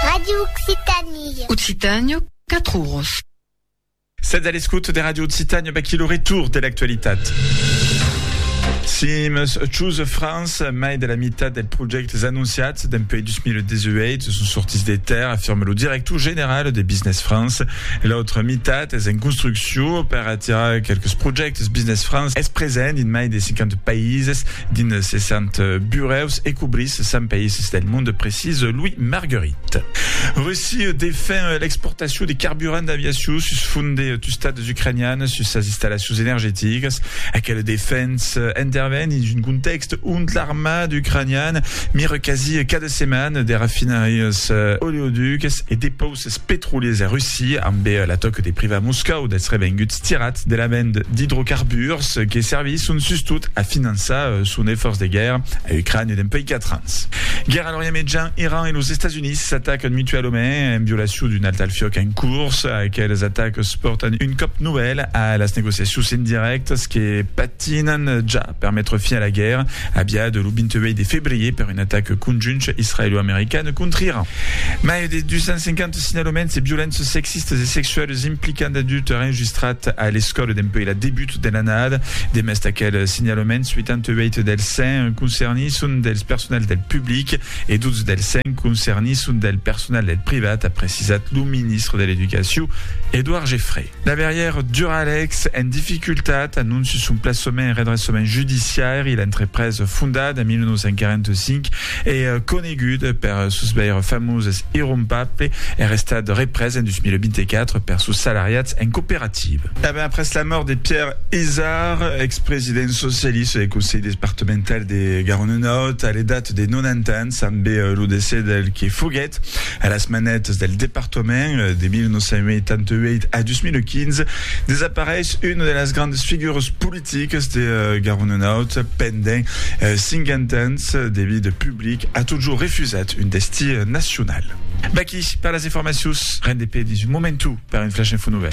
Radio Occitanie. Occitània, 4 oros. Sètz a l'escòt de Radio Occitània, baquí lo retour de l'actualitat. Sims Choose France, mai de la meitat dels projectes anunciats dempuèi 2018 son sortits de terre, afirme lo director general de Business France. L'autra meitat es en construccion Too, per atirar qualques projèctes, Business France es present dins mai de 50 païses, dins 60 burèus e cobrís 100 païses del monde, precisa Louis Marguerit. Russia defen l'exportacion de carburant d'aviacion sus font de tustats ucranians sus sas installacions energeticas. Aquela defensa interven dins un contèxt ont l'armada ucraniana mira quasi cada setmana de rafinarias oleoducas e depausas. Es petroliers de Russia, ambe la tòca de privar Moscòu dels revenguts tirats de la vend d'idrocarburs que servisson sustot a finançar son efòrç de guèrra a Ucrània dempuèi 4 ans. Guèrra a l'Orient Mejan, Iran e los Estats Units s'atacan mutualament en violacion d'un alt al fiòc en curs. Aqueles atacs pòrtan un còp novèl a las negociacions indirèctas que patinan ja. Per metre fin a la guèrra, aviada lo 28 de febrier per un atac conjunt israelo-american contra Iran, mai de 250 signalaments de violences sexistas e sexualas implicant d'adultes enregistrat a l'escòla dempuèi la debut de l'annada. Demest d'aqueles signalaments, 88 dels 100 concernits son dels personals del public e 12 dels 100 concernits son del personal del privat, a precisat lo ministre de l'Educacion, Edouard Geffray. Laverrièr Duralex en dificultat, anonci son plaçament en redressament judiciairi, l'entrepresa fondada en 1945 e coneguda per sos veire famoses irrompable er estat represa en 2024 per sos salariats en cooperativa. E ben après la mòrt de Pierre Izard, expresident socialista del Conselh Despartemental de Garonne Nòrd a l'edat de 90 ans, ambe lo decès del que foguèt A las manetas del departament, de 1988 a 2015, desapareish una de las grandas figuras politicas de Garonnenaut pendent 50 ans de vida public, a totjor refusat un destí nacional. Vaquí per las informacions, ren de pè dins un momentu per un Flash Info Nouvèl.